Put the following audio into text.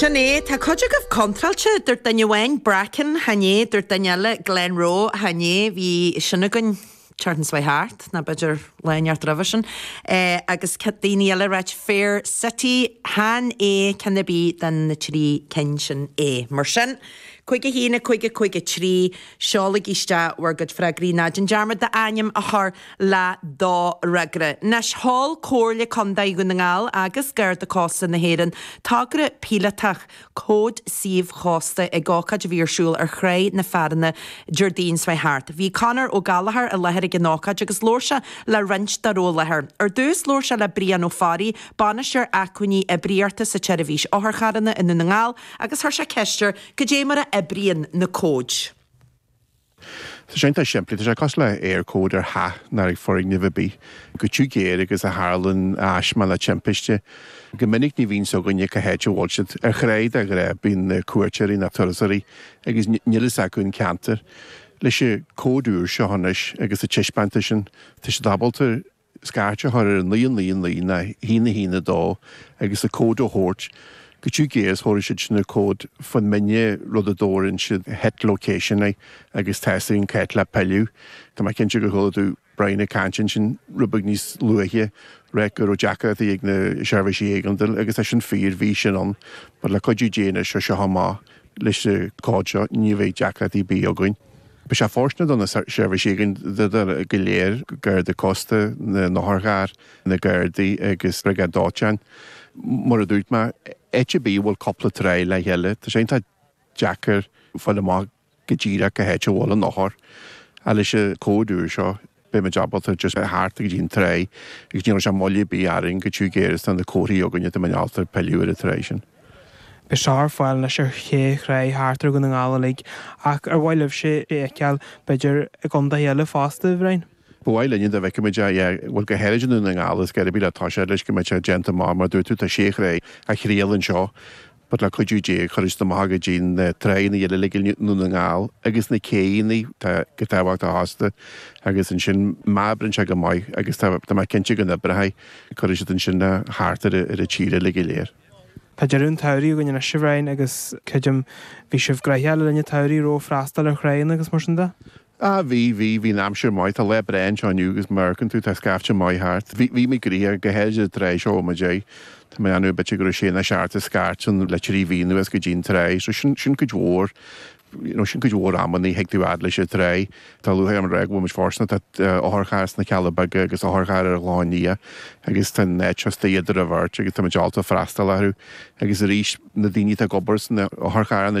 Sin é. Tá cuid agaibh contráilte, dúirt duine amháin, Bracken, chan ea, dúirt duine eile, Glenroe, chan ea, bhí sin againn, an tseachtain seo chuaigh thart, nó b'fhéidir Láí an Neart roimhe sin, agus daoine eile ag ráit, Fair City, chan ea, ceann ar bith de na trí cinn sin é. Mar sin, cúig a haon a cúig a cúig a trí, seolaigí isteach bhur gcuid freagraí, ná déan dearmad d'ainm a chur! le do fhreagra. Anois, sheol Comhairle Contae Dhún na nGall agus Garda Cósta na hÉireann togra píolótach Cóid Suímh Chósta ag ócáid a bhí ar siúl ar Thrá na Fearthainne, Deardaoin seo thart. Bhí Conor Ó Gallchóir i láthair ag an ócáid agus labhair sé le roinnt dá raibh i láthair. Ar dtús, labhair sé le Brian Ó Fearraigh, Bainisteoir Acmhainní Oibríochta sa tSeirbhís Otharcharranna i nDún na nGall agus chuir sé ceist air cad é mar a oibríonn na cóid. Tá sé iontach simplí, tá sé cosúil le hÉirchód ar theach nó ar fhoirgneamh ar bith, chomh tiubh géar agus a tharlaíonn taisme nó timpiste. Go minic ní bhíonn a fhios againne cá háit a bhfuil siad. Ar thráigh de ghnáth, bíonn na cuairteoirí, na turasóirí, agus níl fhios acu an ceantar. Leis an gcód úr seo anois agus é taispeánta ansin, tá siad ábalta scairt a chur ar 999 nó 112 agus an cód a thabhairt chomh tiubh géar is a thabharfaidh siad an cód faigheann muidne rud a dtabharann siad het location air agus tá a fhios againn cá háit le pilleadh tá mé cinnte gur chuala tú Brian ag caint ansin rud beag níos luaithe ag ráit go raibh deacrachtaí ag na seirbhísí éigeandail agus é sin fíor bhí sin ann but le cuidiú Dé anois as seo amach. Leis na cóid seo ní bheidh deacrachtaí ar bith againn. Beidh sé fóirsteanach do na seirbhísí againn go léir, Garda Cósta, na n-otharcharr, na gardaí agus briogáid dóiteáin. Mar a dúirt mé, áit ar bith a bhfuil cúpla tráigh le chéile, tá sé iontach deacair fáil amach go díreach cá háit a bhfuil an othar. Ach leis an cód úr seo, Beidh muid ábalta just theacht go dtí an tráigh agus ní chuirfidh sé moill ar bith orainn chomh tiubh géar is atá na comharthaí againne tá muidne ábalta pilleadh ar an tráigh sin. Beidh sé ar fáil anois ar shé thráigh thart ar Dhún na nGall uilig ach ar mhaith libhse é a fheiceáil, b'fhéidir i gcontaetha eile fosta, a Bhriain? Ba mhaith linne dá bhfeicfeadh muid é, yeah, bhuel go háirid i nDún na nGall ar scor ar bith le toiseacht leis go mbeidh sé déanta mar, mar a dúirt tú, tá sé thráigh á thriail anseo. But le cuidiú Dé cuirfidh siad amach go dtí na tráigheanna eile uilig i nDún na nGall agus na céidheanna atá chomh tábhachtach fosta agus ansin má oibríonn sé go maith agus tá mé cinnte go n-oibreoidh, cuirfidh siad ansin thart ar an tír uilig go léir. Tá deireadh an tsamhraidh againn anois, a Bhriain, agus creidim bhí sibh gnoitheach le linn an tsamhraidh, ó thaobh freastal ar thráigheanna agus mar sin de? A, Bhí, bhí, bhí an aimsir maith, tá lá breá anseo inniu agus mar a fheiceann tú tá scaifte maith thart. Bhí, bhí muid gnoitheach, go háirithe sa tráigh seo ó muid ag, tá mé in ann a bitir go raibh Séamus thart a scairteann le trí mhí anuas go dtí an tráigh so sin, sin cuid mhór, you know, sin cuid mhór amanna a thig tú fhad leis an tráigh. Tá luaithe ar an ábhar a bhfuil muid fóirsteanach, tá otharcharr sna Cealla Beaga agus otharcharr ar an Chlochán Liath agus tá an áit seo istigh idir a' bheirt agus tá muid ábalta freastal orthu agus arís na daoine atá ag obair sna otharcharranna